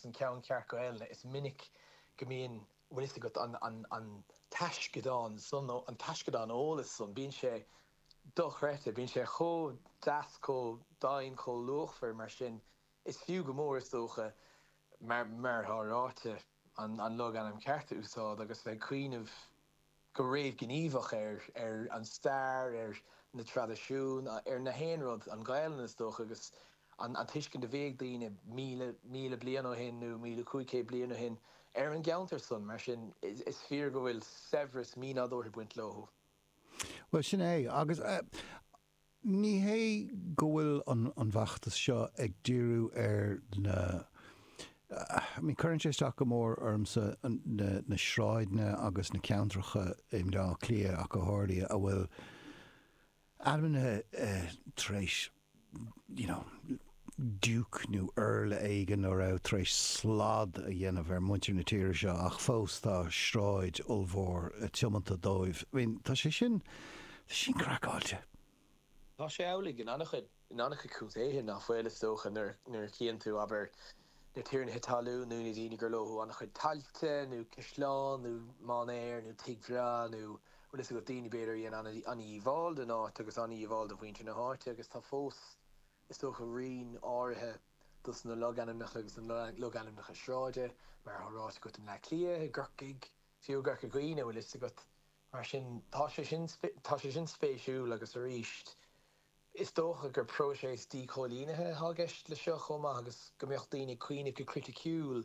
An ceann ceart Gaelainne, is minic go mbíonn, bhfuil fhios agat, an taisceadán san, an taisceadán eolais san, bíonn sé dochreidte, bíonn sé chomh deas, chomh deimhin, chomh luachmhar, mar sin, is fiú go mór, is dócha, mar atá ráite, an logainm ceart a úsáid agus bheith ag cuimhneamh go réamhghníomhach ar an stair, ar na traidisiúin, ar nach aon rud, an Ghaelainn, is dócha, agus an tuiscint a bhí ag daoine míle, míle bliain ó shin, nó míle cúig chéad bliain ó shin, ar an gceantar san. Mar sin, is fíor go bhfuil saibhreas mínádúrtha ag baint leothu. Bhuel, sin é. Agus Ní hé go bhfuil an feachtas seo ag díriú ar na, I mean cuireann sé isteach go mór ormsa na sráideanna agus na ceantracha i mBleá Cliath ach go háirithe a bhfuil ainmnithe tar éis you know, diúc nó iarla éigin a raibh tar éis slad a dhéanamh ar mhuintir na tíre seo ach fós tá sráid ollmhór tiomanta dóibh. I mean, tá sé sin, tá sé sin craiceáilte. Tá sé amhlaidh in an-chuid, in an-chuid contaetha ná fuil, is dócha. Nuair, nuair a chíonn tú, abair, na tiarnaithe talún nó na daoine gur leothu an-chuid tailte nó caisleán nó mainéar nó tigh breá nó, bhfuil fhios agat, daoine, b'fhéidir, a dhein an-dhíobháil don áit agus an-dhíobháil do mhuintir na háite agus tá fós, Is dócha roinnt áirithe dos na logainmneacha agus na logainmneacha sráide, mar atá ráite agat i mBleá Cliath, i gCorcaigh, fiú i gCorca Dhuibhne, a bhfuil fhios agat. Mar sin, tá sé sin, tá sé sin spéisiúil agus arís, is dócha gur próiseas díchoilínithe atá i gceist le seo chomh maith agus go mbeadh daoine ag cuimhneamh go criticiúil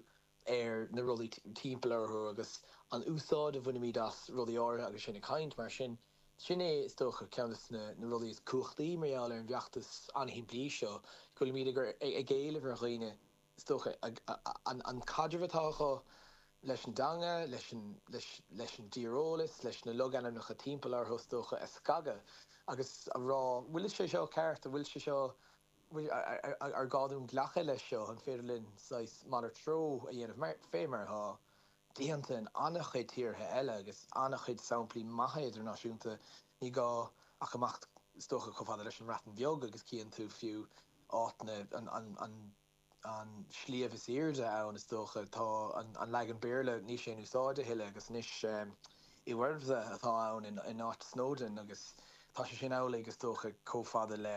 ar na rudaí timpeall orthu agus an úsáid a bhainimid as rudaí áirithe agus sinn ag caint. Mar sin, sin é, is dócha, ceann dos na rudaí is cumhachtaí mar gheall ar an bhfeachtas an-shimplí seo, go bhfuilimid ag éileamh ar dhaoine, is dócha, an caidreamh atá acu leis an dteanga, leis an dtíreolas, leis na logainmneacha timpeall orthu, is dócha, a scagadh agus a rá, bhfuil sé seo ceart, an bhfuil sé seo. bhfuil ar ghá dúinn glacadh leis seo? An féidir linn saghas malairt treo a dhéanamh, fé mar atá déanta in an-chuid tíortha eile agus an-chuid samplaí maithe idirnáisiúnta? Ní gá ach imeacht is dócha chomh fada leis an mBreatain Bheag agus cíonn tú fiú áit na an sliabh is aoirde ann, is dócha. Tá an leagan Béarla níl sé in úsáid a thuilleadh, agus anois Yr Wyddfa atá ann in áit Snowdon, agus tá sé sin amhlaidh, is dócha, chomh fada le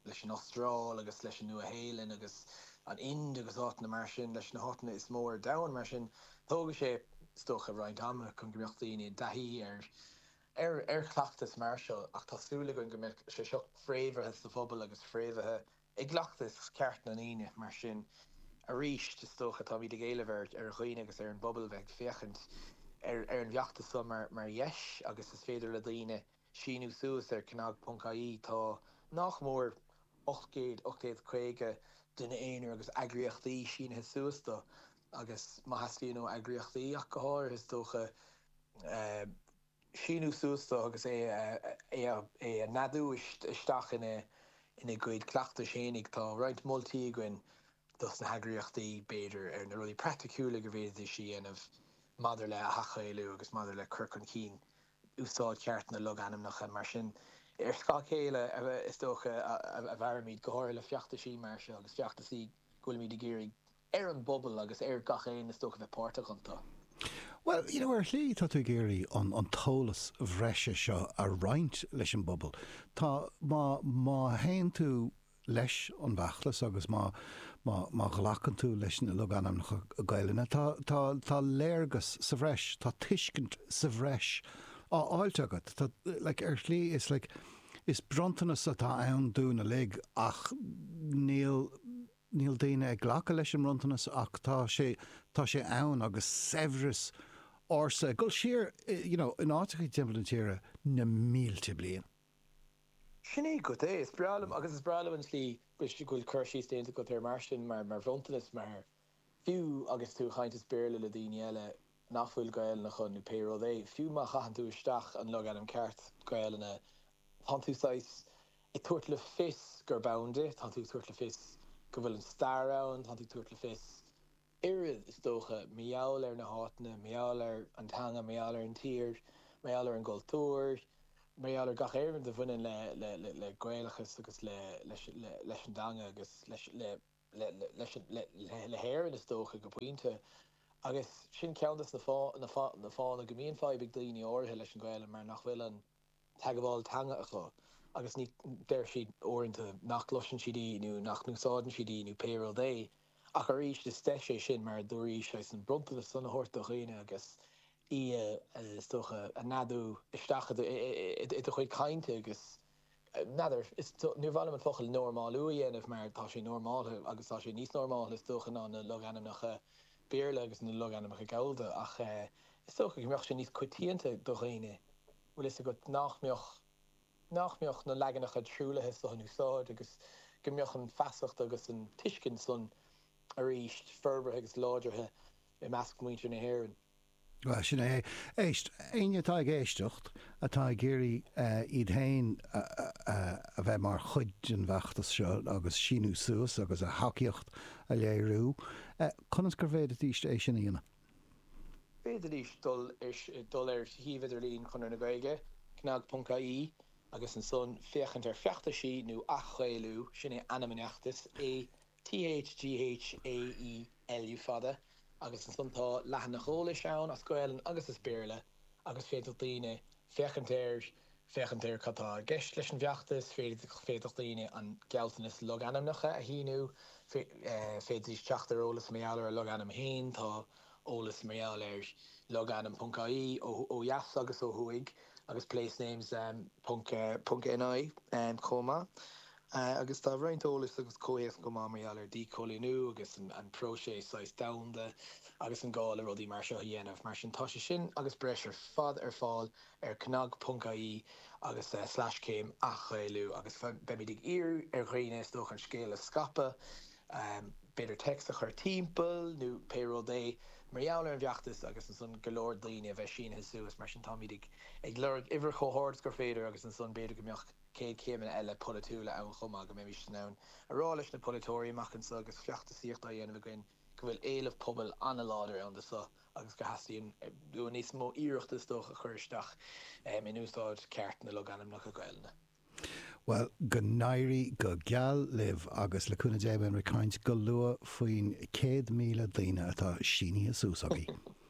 leis an Astráil agus leis an Nua-Shéalainn agus an Ind agus áiteanna mar sin, leis na háiteanna is mó ar domhan. Mar sin, tógfaidh sé, is dócha, roinnt ama chun go mbeadh daoine i dtaithí ar chleachtas mar seo, ach tá súil againn go mbeidh sé seo fréamhaithe sa phobal agus fréamhaithe I gcleachtas ceart na ndaoine, mar sin, arís is dócha, táimid ag éileamh ar dhaoine agus ar an bpobal a bheith ag féachaint ar an bhfeachtas seo mar dheis agus is féidir le daoine síniú suas ar cnag ponc ie tá nách mór 800, 850 duine aonair agus eagraíochtaí sínithe suas dó agus má theastaíonn ó eagraíochtaí ach go háirithe is dócha go. síniú suas dó agus é a neadú isteach ina gcuid cleachtais fhéinig. Tá roinnt moltaí againn dos na heagraíochtaí, b'fhéidir, ar na rudaí praiticiúla go bhféadfaidís a dhéanamh maidir le hathGhaelú agus maidir le cur chun cinn úsáid cheart na logainmneacha. Mar sin, ar scáth chéile, is dócha, a mhairimid go háirithe le feachtasaí mar seo agus feachtasaí go bhfuilimid ag iarraidh ar an bpobal agus ar gach aon is dócha bheith páirteach iontu. Bhuel, you know, ar shlí tá tú ag iarraidh an t-eolas bhreise seo a roinnt leis an bpobal. Tá, má, má théann tú leis an bhfeachtas agus má, má, má ghlacann tú leis na logainmneacha Gaelainne, tá, tá, tá léargas sa bhreis, tá tuiscint sa bhreis á fháilt agat. Tá, like, ar shlí is like, is bronntanas atá ann dúinn uilig ach níl, Níl daoine ag glacadh leis an mbronntanas ach tá sé, tá sé ann agus saibhreas ársa ag dul siar you know in áiteacha timpeall na tíre na mílte bliain. Sin é agat é. Is breá liom agus is breá liom an tslí go bhfuil cur síos déanta agat air mar sin mar bhronntanas mar fiú agus tú ag caint as Béarla le daoine eile, nach bhfuil Gaelainn acu, nó pé rud é. Fiú má chaitheann tú isteach an logainm ceart Gaelainne, tá tú saghas ag tabhairt le fios gurb ann di, tá tú ag tabhairt le fios go bhfuil an stair ann, tá tú ag tabhairt le fios oiread, is dócha, mar gheall ar na háiteanna, mar gheall ar an teanga, mar gheall ar an tír, mar gheall ar an gcultúr, mar gheall ar gach aon rud a bhaineann le Gaelachas agus leis an dteanga agus le le hÉirinn, is dócha, go pointe, agus sin ceann de na fáthanna go mbíonn fadhb ag daoine áirithe leis an Ghaelainn, mar nach bhfuil an teagmháil teanga acu, agus deir siad uaireanta nach gcloiseann siad í, nó nach n-úsáideann siad í, nó pé rud é, ach arís, is deis é sin, mar a dúraís, saghas an bronntanas san a thabhairt do dhaoine, agus í, is dócha, a neadú isteach i do chuid cainte, agus. N'fheadar, níor mhaith liom an focal 'normálú' a dhéanamh mar tá sé normáltha agus tá sé níos normáltha is dócha ná na logainmneacha Béarla agus na logainmneacha Gallda ach is dócha go mbeadh sé níos coitianta do dhaoine, bhfuil fhios agat, nach mbeadh, nach mbeadh na leaganacha truaillithe so in úsáid agus go mbeadh an feasacht agus an tuiscint san arís forbartha agus láidrithe i measc muintir na hÉireann. Bhuel, sin é. Éist. Éinne atá ag éisteacht, atá ag iarraidh iad féin a bheith mar chuid den bhfeachtas seo agus síniú suas agus a thacaíocht a léiriú, conas gur bhféadfaidís é sin a dhéanamh? Féadfaidís dul ar shuíomh idirlín Chonradh na Gaeilge, cnag.ie, agus ansan féachaint ar Feachtaisí nó Ath-Ghaelú, sin é ainm an fheachtais, Th gh a í LU fada agus ansan tá leathanach eolais ann as Gaelainn agus as Béarla agus féadfadh daoine féachaint air, féachaint ar cad tá i gceist leis an bhfeachtas, féadfadh, féadfadh daoine an gealltanas logainmneacha a shíniú, féadfaidís teacht ar eolas mar gheall ar a logainm féin, tá eolas mar gheall ar logainm ponc ie ó dheas agus ó thuaidh agus place names ponc NI chomh maith. agus tá roinnt eolais agus comhthéacs chomh maith mar gheall ar dhíchoilíniú agus an próiseas saghas domhanda agus an gá le rudaí mar seo a dhéanamh. Mar sin, tá sé sin agus breis ar fad ar fáil ar cnag.ie agus slash céim athGhaelú agus beimid ag iarraidh ar dhaoine, is dócha, an scéal a scaipeadh, b'fhéidir text a chur timpeall nó pé rud é, mar gheall ar an bhfeachtas agus ansan go leor daoine a bheith sínithe suas. Mar sin, táimid ag lorg uimhir chomh hard is gur féidir agus ansan b'fhéidir go mbeadh. céad céimeanna eile polaitiúla ann chomh maith, go mbeimis in ann a rá leis na polaiteoirí amach anseo agus feachtasaíocht á dhéanamh againn go bhfuil éileamh pobail an-láidir ann do seo agus go dteastaíonn uainn níos mó iarrachta is dócha a chur isteach in úsáid cheart na logainmneacha Gaelainne. Bhuel, go n-éirí go geal libh agus le cúnamh Dé beimid ag caint go luath faoin 100,000 daoine atá sínithe suas agaibh.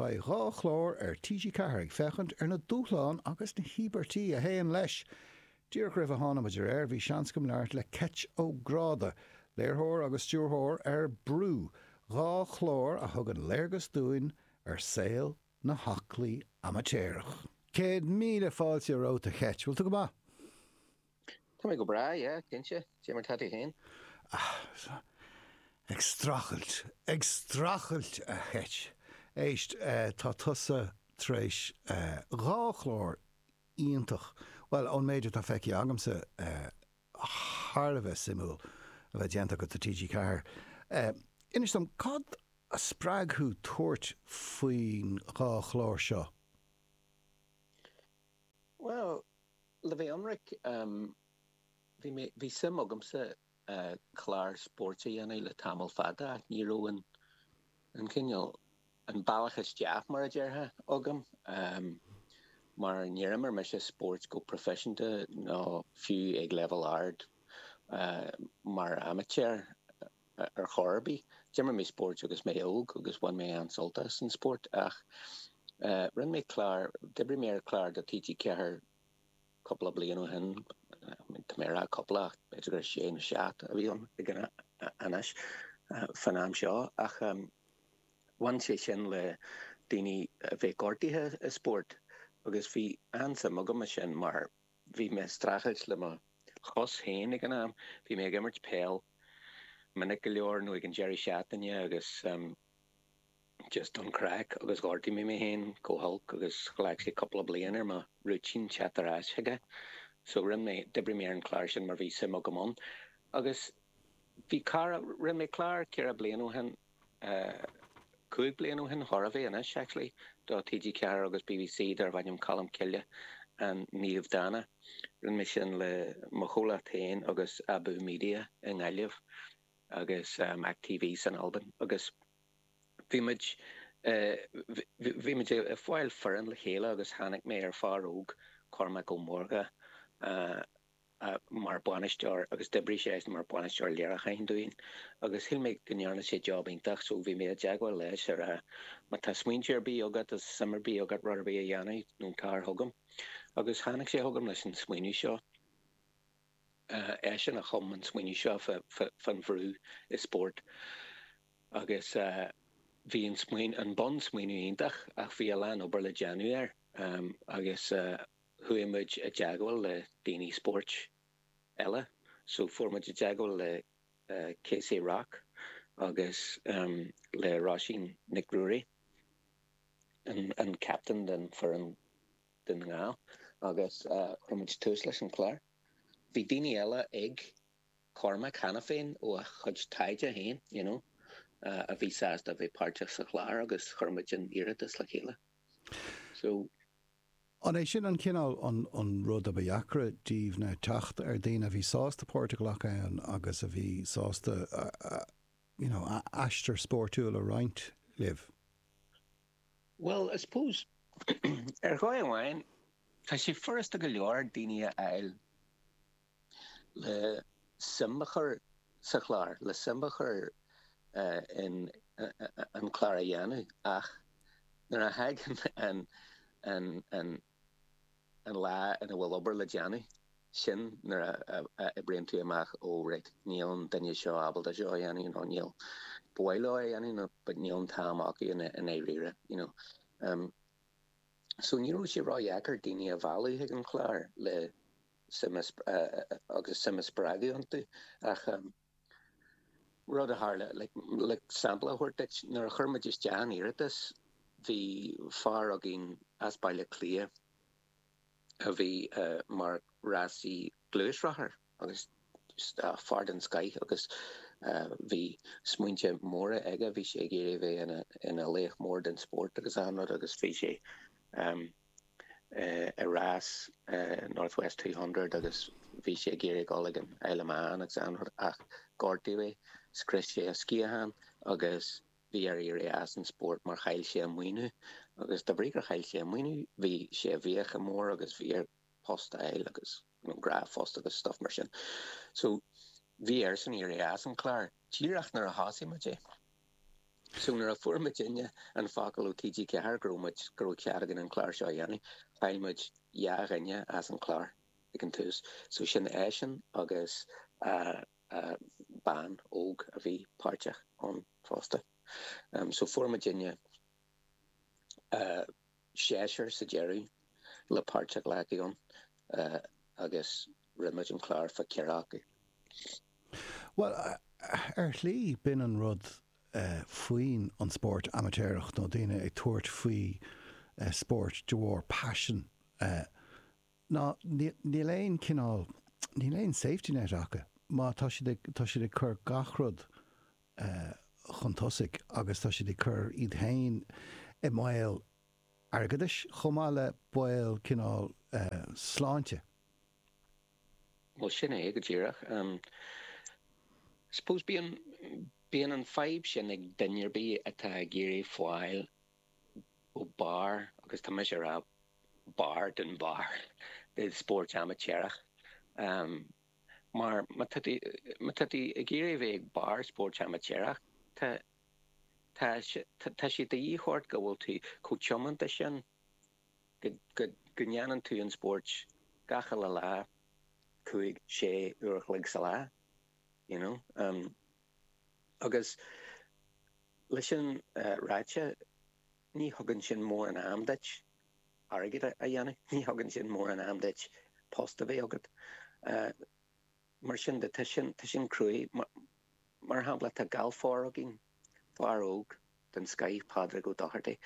Beidh dhá chlár ar TG4 ag féachaint ar na dúshláin agus na híobairtí a théann leis. Díreach roimh a tháinig muid ar aer bhí seans agam labhairt le Ceit Ó Gráda, léirtheoir agus stiúrthóir ar Brú, dhá chlár a thugann léargas dúinn ar saol na haclaí amaitéaracha. Céad míle fáilte romhat a Cheit. Bhfuil tú go maith? Tá mé go breá, yeah, cinnte. Cé mar tá tú féin? Ah, ag strachailt, ag strachailt, a Cheit. Éist, tá tusa tar éis dhá chlár iontach, bhuel, ón méid atá feicthe agamsa, thar a bheith suimiúil a bheith déanta agat do TG4. Inis dom, cad a spreag thú tabhairt faoin dhá chlár seo? Bhuel, le bheith ionraic, bhí mé, bhí suim agamsa clár spóirt a dhéanamh le tamall fada ach ní raibh an, an cineál, an bealach isteach, mar a déarfá, agam mar níor imir mise spóirt go proifisiúnta ná fiú ag leibhéal ard mar amaitéar. ar chor ar bith. D'imir mé spóirt agus mé óg agus bhain mé an-sult as an spórt ach rinne mé clár, d'oibrigh mé ar chlár do TG4 cúpla bliain ó shin, tá mé ag rá cúpla ach b'fhéidir gur sé nó seacht a bhí ann ag an am, fán am seo, ach bhain sé sin le daoine a bheith gortaithe i spórt agus bhí an-suim agam ansin mar, Bhí mé ag streachailt le mo chos féin ag an am. Bhí mé ag imirt peile minic go leor ag an deireadh seachtaine agus just don craic agus ghortaigh mé mé féin go holc agus ghlac sé cúpla bliain ar mo rúitín teacht ar ais chuige féin. So rinne mé, d'oibrigh mé ar an chlár sin mar bhí suim agam ann agus bhí cara, rinne mé clár ceithre bliana ó shin Cúig bliana ó shin, chóir a bheith anois, actually, do TG4 agus BBC darbh ainm Colm Cille An Naomh Dána. Rinne mé sin le mo chomhlacht féin agus Abú Media i nGaillimh agus Mac TV san Albain agus bhí muid bhí muid ag fáil foireann le chéile agus tháinig mé ar fear óg, Cormac Ó Mórdha, mar bhainisteoir agus d'oibrigh sé mar bhainisteoir léiriúcháin dúinn agus shíl mé go ndearna sé job iontach so bhí mé i dteagmháil leis ag rá má tá smaointe ar bith agat nó suim ar bith agat rud ar bith a dhéanamh tar chugam agus tháinig sé chugam leis an smaoineamh seo eisean a chum an smaoineamh seo fán bhrú i spórt agus bhí an smaoineamh an bun smaoineamh iontach ach bhí a lán obair le déanamh air agus chuaigh muid i dteagmháil le daoine spóirt eile, so fuair muid i dteagmháil le KC Rock agus le Róisín Nic Ruairí, an captain den foireann Dún na nGall, agus chuir muid tús leis an chlár. Bhí daoine eile ag Cormac cheana féin ó a chuid taighde féin you know a bhí sásta a bheith páirteach sa chlár agus chuir muid an t-iarratas le chéile. So. An é sin an cineál, an rud a ba dheacra daoibh ná teacht ar daoine a bhí sásta páirt a ghlacadh ann agus a bhí sásta you know a n-aistear spóirtiúil a roinnt libh? Bhuel, I suppose, ar dhóigh amháin, tá sé furasta go leor daoine a fháil. le suim a chur sa chlár, le suim a chur in an clár a dhéanamh ach nuair a thagann an lá ina bhfuil obair le déanamh, sin nuair a oibríonn tú amach, ó raight, níl an duine seo ábalta seo a dhéanamh nó níl, ba mhaith leo é a dhéanamh but níl an t-am acu i ndáiríre, you know. So ní raibh sé ró-dheacair daoine a mhealladh chuig an chlár le. agus suim a spreagadh iontu. Ach rud a tharla, le sampla a thabhairt duit, nuair a chuir muid isteach an iarratas, bhí fear againn as Baile Átha Cliath a bhí mar rásaí gluaisrothair, agus fear den scoith, agus bhí smaointe móra aige, bhí sé ag iarraidh a bheith ina laoch mór den spórt agus achan rud, agus bhí sé. ar rás North West Two Hundred agus bhí sé ag iarraidh a dhul ag an Isle of Man agus achan rud ach gortaíodh é, scrios sé a sciathán agus bhí air éirí as an spórt mar chaill sé a maoiniú agus de bhrí gur chaill sé a maoiniú bhí sé i bhfiacha móra agus bhí air post a fháil agus gnáthphost agus stuff mar sin so bhí airsean éirí as an chlár díreach nuair a thosaigh muid é. So nuair a fuair muidinne an focal ó TG4 go raibh muid, go raibh cead againn an clár seo a dhéanamh, chaill muid dhá dhuine as an chlár ag an tús. So sin eisean agus bean óg a bhí páirteach ann fosta. So fuair muidinne. seisear sa deireadh le páirt a ghlacadh ann agus rinne muid an clár fá cheathrar acu. Bhuel, ar shlí, b'in an rud faoin an spórt amaitéarach nó daoine ag tabhairt faoi spórt de bharr paisin ná níl aon cineál, níl aon safety net acu má tá siad ag, tá siad ag cur gach rud chun tosaigh agus tá siad ag cur iad féin i mbaol airgeadais chomh maith le baol cineál sláinte. Bhuel, sin é go díreach. I suppose bíonn, bíonn an fadhb sin ag duine ar bith atá ag iarraidh fáil go barr, agus tá mise ag rá barr den bharr, i spóirt amaitéarach. mar má tá tú ag iarraidh a bheith ag barr spóirt amaitéarach, tá sé de dhíth ort go bhfuil tú chomh tiomanta sin go ndéanann tú an spórt gach uile lá, cúig, sé uair a chloig sa lá, you know. Agus leis sin ráite. Ní thugann sin mórán am duit airgead a dhéanamh, ní thugann sin mórán am duit post a bheith agat. Mar sin de, tá sin, tá sin cruaidh. Mar shampla, tá galfaire againn, fear óg den scoith, Pádraig Ó Dochartaigh,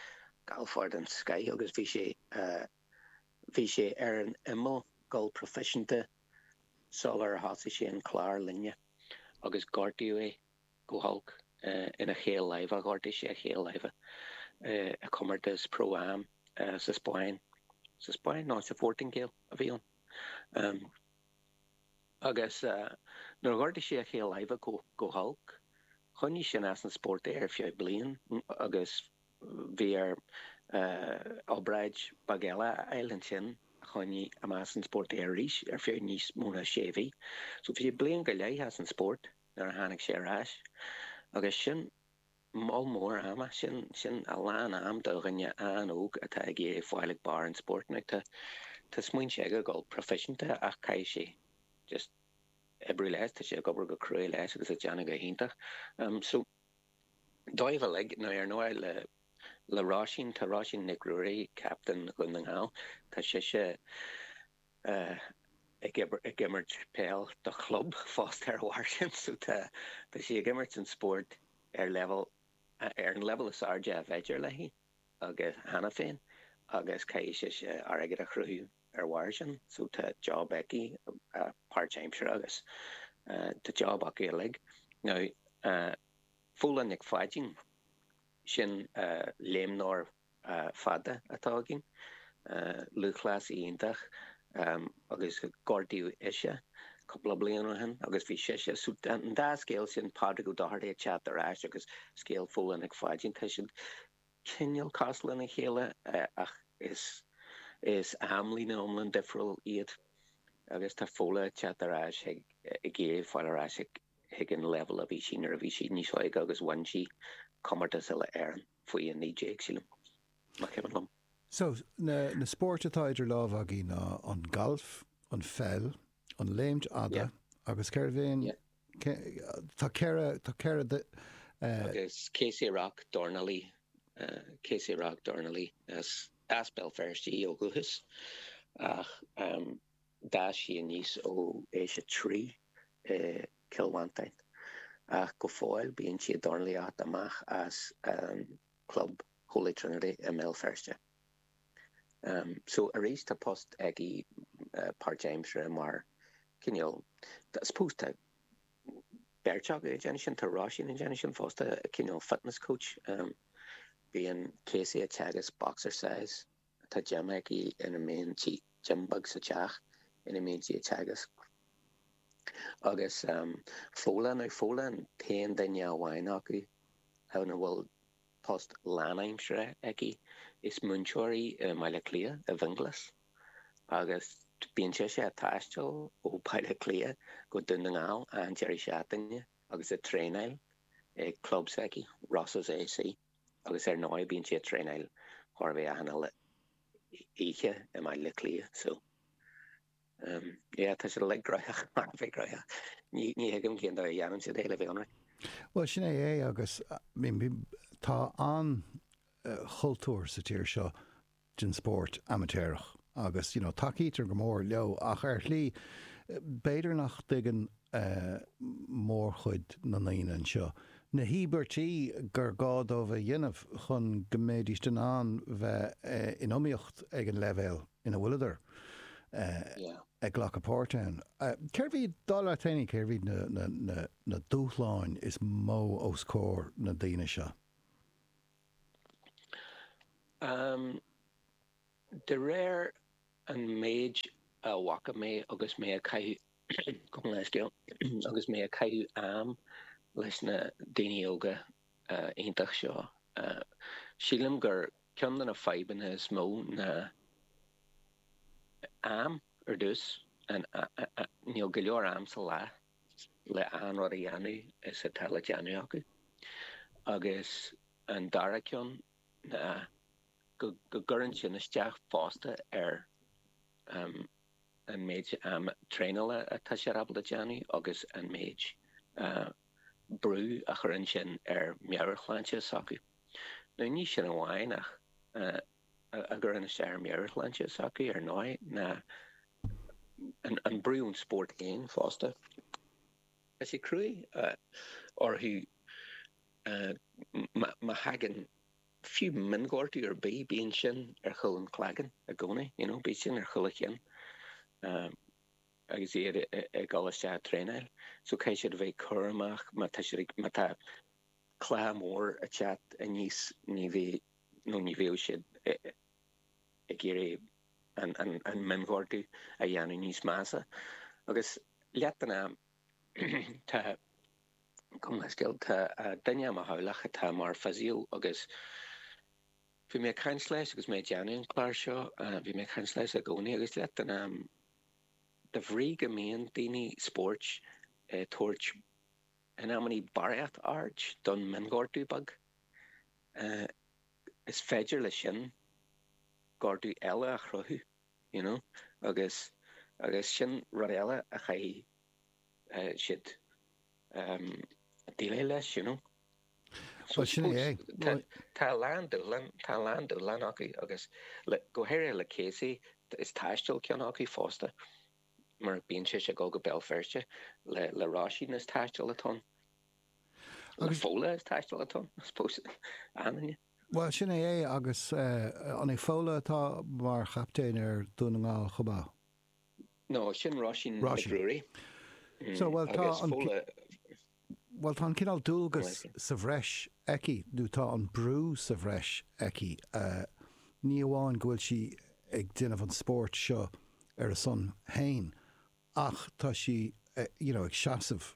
galfaire den scoith agus bhí sé, bhí sé ar an imeall, ag gabháil proifisiúnta sular thosaigh sé an clár linne agus gortaíodh é. go holc ina chaol láimhe, ghortaigh sé a chaol láimhe i gcomórtas Pro Am sa Spáinn, sa Spáinn? No, sa Phortaingéil a bhí ann, agus nuair a ghortaigh sé a chaol láimhe go holc, choinnigh sin as an spórt é ar feadh bliain agus bhí air obráid beag eile a fháil ansin a choinnigh amach as an spórt é arís ar feadh níos mó ná sé mhí. So bhí sé bliain go leith as an spórt. nuair a tháinig sé ar ais. Agus sin moll mór ama, sin, sin a lán am do dhuine an-óg atá ag iarraidh fáil ag barr an spóirt. Now tá, tá smaointe aige a dhul proifisiúnta ach caithfidh sé just oibriú leis, tá sé ag obair go cruaidh leis agus ag déanamh go hiontach. Em, so dóibh uilig, now ar ndóigh le, le Róisín, tá Róisín Nic Ruairí, captain Dhún na nGall, tá sise, ag imirt peil do chlub fosta ar bharr sin so tá sí ag imirt an spóirt ar leibhéal, ar an leibhéal is airde ab fhéidir léi agus, cheana féin agus caithfidh sise airgead a chruthú ar bharr sin so tá job aici páirt-aimseartha agus tá job acu uilig. Now Fódhla Nic Pháidín, sin léimneoir fada atá againn, lúthchleasaí iontach agus gortaíodh ise cúpla bliain ó shin agus bhí sise, so an dá scéal sin, Pádraig Ó Dochartaigh ag teacht ar ais agus scéal Fódhla Nic Pháidín, tá siad cineál cosúil lena chéile ach is amlíne iomlán difriúil iad agus tá Fódhla ag teacht ar ais ag iarraidh fáil ar ais chuig an leibhéal a bhí sí nuair a bhí sí níos óige agus bhain sí comórtas Uile-Éireann. faoi 19, sílim, nach cuimhin liom. So, na spóirt atá idir lámha againn ná an galf, an pheil, an léimt fhada agus cérbh é an, tá ceithre, tá ceithre de. Agus Kaci Rock, dornálaí, Kaci Rock, dornálaí, is as Béal Feirste í ó dhúchas ach. D'fhás sí aníos ó aois a trí i gCill Mhantáin ach go fóill bíonn sí ag dornálaíocht amach as an chlub Holy Trinity i mBéal Feirste. So, arís, tá post aici páirtaimseartha mar cineál, I suppose tá beirt acu ag déanamh sin, tá Róisín ag déanamh sin fosta, cineál fitness coach. Bíonn Kaci ag teagasc boxercise. atá déanta aici ina mbíonn gym beag sa teach ina mbíonn sí ag teagasc agus Fodhla an, Fodhla an t-aon duine amháin acu a bhfuil post lánaimseartha aici, is múinteoir í i mBaile Cliath, i bhFionnghlas, agus bíonn sise ag taisteal ó Bhaile Cliath go Dún na nGall achan deireadh seachtaine agus ag traenáil ag club s'aici, Rosses A.C. agus ar ndóigh bíonn sí ag traenáil chóir a bheith achan oíche i mBaile Átha Cliath so em yeah tá siad uilig gnóthach, thar a bheith gnóthach. Ní ní thuigim cén dóigh a dhéanann siad é le bheith ionraic. Bhuel sin é é agus tá an-chultúr sa tír seo den spórt amaitéarach agus, you know, tacaítear go mór leo ach ar shlí, b'fhéidir nach dtuigeann mórchuid na ndaoine anseo na híobairtí gur gá dóibh a dhéanamh chun go mbéidís in ann bheith in iomaíocht ag an leibhéal ina bhfuileadar ag glacadh páirt ann. Céard iad, dar leat féin, céard iad na dúshláin is mó os comhair na ndaoine seo? Am, de réir an méid a bhfaca mé agus mé ag caitheamh, gabh mo leithscéal, agus mé ag caitheamh am leis na daoine óga iontach seo, sílim gur ceann de na fadhbanna is mó ná am, ar dtús, níl go leor am sa lá. le achan rud a dhéanamh is atá le déanamh acu, agus an dara ceann ná go gcuireann sin isteach fosta ar an méid traenála atá siad ábalta déanamh agus an méid brú a chuireann sin ar meabhairshláinte s'acu. Ní sin amháin ach a gcuireann isteach ar mheabhairshláinte s'acu, ar ndóigh, ná an brú ón spórt féin fosta. Tá sé cruaidh orthu má thagann fiú mionghortú ar bith, bíonn sin ar chúl an chloigeann i gcónaí, you know, bíonn sin ar chúl a gcinn agus iad ag dul isteach ag traenáil. So caithfidh siad a bheith cúramach má tá siad ag, má tá cluiche mór ag teacht aníos, ní bheidh, nó ní bheadh siad ag iarraidh an mionghortú a dhéanamh níos measa. Agus leath den am, tá, gabh mo leithscéal, tá duine i mo theaghlach atá mar physio agus bhí mé ag caint leis agus mé ag déanamh an clár seo, bhí mé ag caint leis i gcónaí agus leath den am, de bhrí go mbíonn daoine spóirt ag tabhairt In amannaí barraíocht aird don mionghortú beag, is féidir leis sin gortú eile a chruthú, you know, agus agus sin rud eile a chaithfidh siad déileáil leis, you know. So I suppose tá a lán dúshlán, tá a lán dúshlán acu agus go háirithe le Casey is taisteal ceann acu fosta. mar bíonn sise ag dul go Béal Feirste le Róisín is taisteal atá ann agus Fódhla is taisteal atá ann I suppose Ánainne. Bhuel, sin é é agus an é Fódhla atá mar chaptaen ar Dhún na nGall chomh maith? No, sin Róisín Nic Ruairí. So, bhuel tá an. Bhuel, tá an cineál dualgas sa bhreis aici, nó tá an brú sa bhreis aici. Ní amháin go bhfuil sí ag déanamh an spóirt seo ar a son féin, ach tá sí, you know, ag seasamh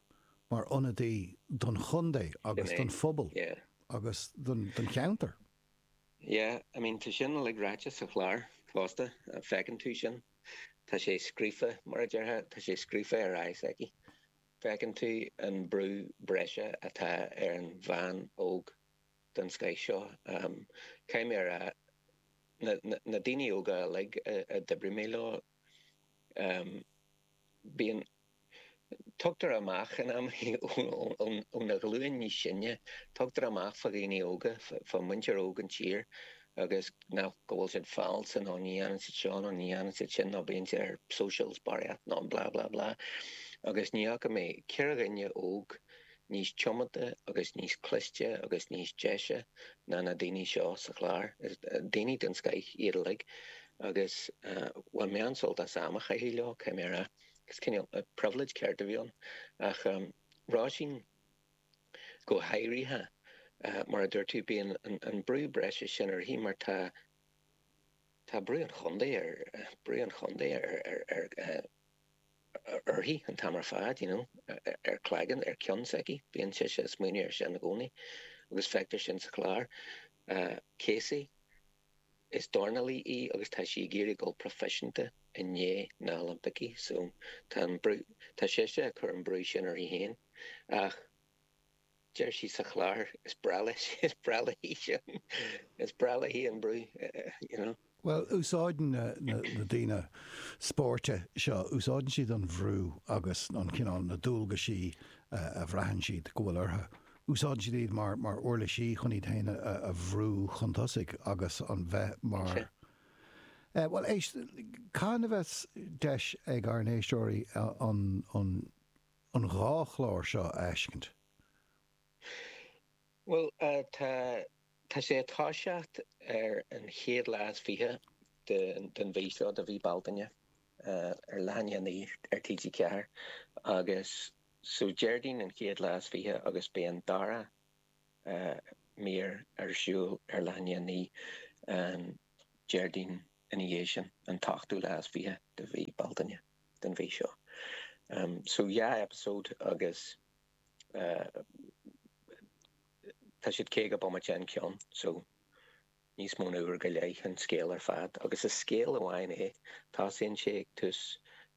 mar ionadaí don chontae agus don phobal agus don cheantar. Yeah, I mean, tá sin uilig ráite sa chlár fosta, feiceann tú sin. Tá sé scríofa, mar a déarfá, tá sé scríofa ar aghaidh s'aici. Feiceann tú an brú breise atá ar an bhean óg den scoith seo. Caithfidh mé a rá, na daoine óga uilig a d'oibrigh mé leo, bíonn, tugtar amach in amannaí ón ghlúin níos sine, tugtar amach fá dhaoine óga, fá mhuintir óg an tír, agus ná go bhfuil siad falsa nó ní dhéanann siad seo nó ní dhéanann siad sin nó bíonn siad ar socials barraíocht nó blah blah blah agus ní fhaca mé ceathrar daoine óga níos tiomanta agus níos cliste agus níos deise ná na daoine seo sa chlár. Is daoine den scoith iad uilig agus bhain mé an-sult as am a chaitheamh leo, caithfidh mé a rá. Is cineál privilege ceart a bhí ann. Ach Róisín. go háirithe, mar a dúirt tú, bíonn an brú breise sin uirthi mar tá tá brú an chontae ar brú an chontae ar ar ar uirthi an t-am ar fad you know ar cloigeann ar ceann s'aici bíonn sise ag smaoineamh ar sin i gcónaí agus feictear sin sa chlár Casey Is dornálaí í agus tá sí ag iarraidh dul proifisiúnta i ndiaidh na nOilimpeacha so tá an brú, tá sise ag cur an brú sin uirthi féin ach deir sí sa chlár, is breá leis, is breá léi sin, is breá léi an brú, you know. Bhuel, úsáideann na daoine spóirt seo, úsáideann siad an bhrú agus an cineál, na dualgaisí a bhraitheann siad go bhfuil orthu. úsáideann siad iad mar uirlisí chun iad féin a bhrú chun tosaigh agus a bheith mar eh bhuel éist cathain a bheas deis ag ár n-éisteoirí an an an dhá chlár seo a fheiscint. Bhuel eh tá tá sé ag toiseacht ar an chéad lá is fiche de den mhí seo de mhí Bealtaine eh ar leath i ndiaidh a naoi ar TG4 agus So Déardaoin an chéad lá is fiche agus beidh an dara mír ar siúl ar leath i ndiaidh a naoi an Déardaoin ina dhiaidh sin, an t-ochtú lá is fiche de mhí Bealtaine den mhí seo. So dhá eipeasóid agus tá siad caoga bomaite an ceann. So. níos mó ná uair go leith an scéal ar fad, agus is scéal amháin é. Tosaíonn sé ag tús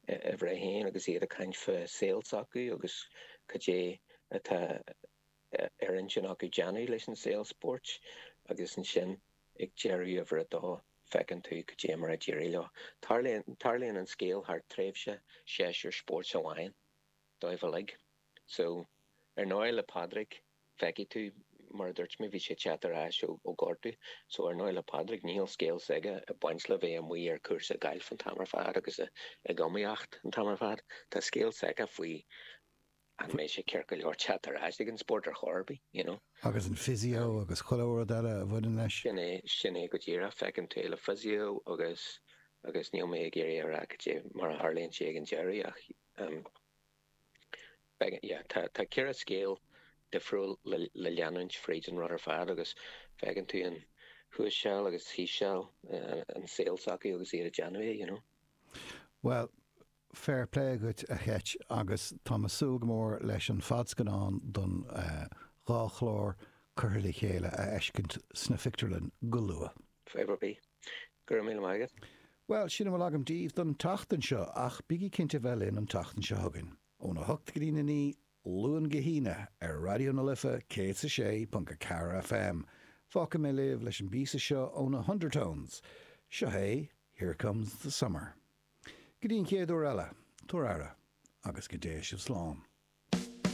uimhir a haon agus iad ag caint fá saol s'acu agus cad é atá ar intinn acu déanamh leis an saol spóirt, agus ansin ag deireadh uimhir a dó feiceann tú cad é mar a d'éirigh leo. Tarlaíonn an scéal thar tréimhse séasúr spóirt amháin dóibh uilig. So, ar ndóigh le Pádraig, feicfidh tú, mar a dúirt mé, bhí sé ag teacht ar ais ó gortú, so ar ndóigh le Pádraig níl scéal s'aige ag baint le bheith amuigh ar cúrsa gailf an t-am ar fad agus ag iomaíocht an t-am ar fad, tá scéal s'aige faoi an mbeidh sé ceart go leor teacht ar ais ag an spórt ar chor ar bith, you know. Agus an physio agus chuile rud eile a bhaineann leis. Sin é, sin é go díreach, feiceann tú é le physio agus, agus níl mé ag iarraidh a rá cad é mar a tharlaíonn sé ag an deireadh ach. Tá ceithre scéal difriúil le leanúint fríd an rud ar fad agus feiceann tú thuas seal agus thíos seal i saol s'acu agus iad ag déanamh é, you know. Bhuel, fair play dhuit a Cheit agus táim ag súil go mór leis an fadscannán don dhá chlár curtha le chéile a fheiscint sna phictiúrlainn go luath. Fair play. Go raibh míle maith agat. Bhuel, sin a bhfuil agam daoibh don tseachtain seo, ach bígí cinnte a bheith linn an tseachtain seo chugainn, óna hocht go dtí na naoi, Luan go hAoine, ar Raidió na Life 106.4 FM. Fágfaidh mé sibh leis an bpíosa seo ó na hUndertones. Seo é Here Comes the Summer. Go dtí an chéad uair eile, tabhair aire, agus go dté sibh slán.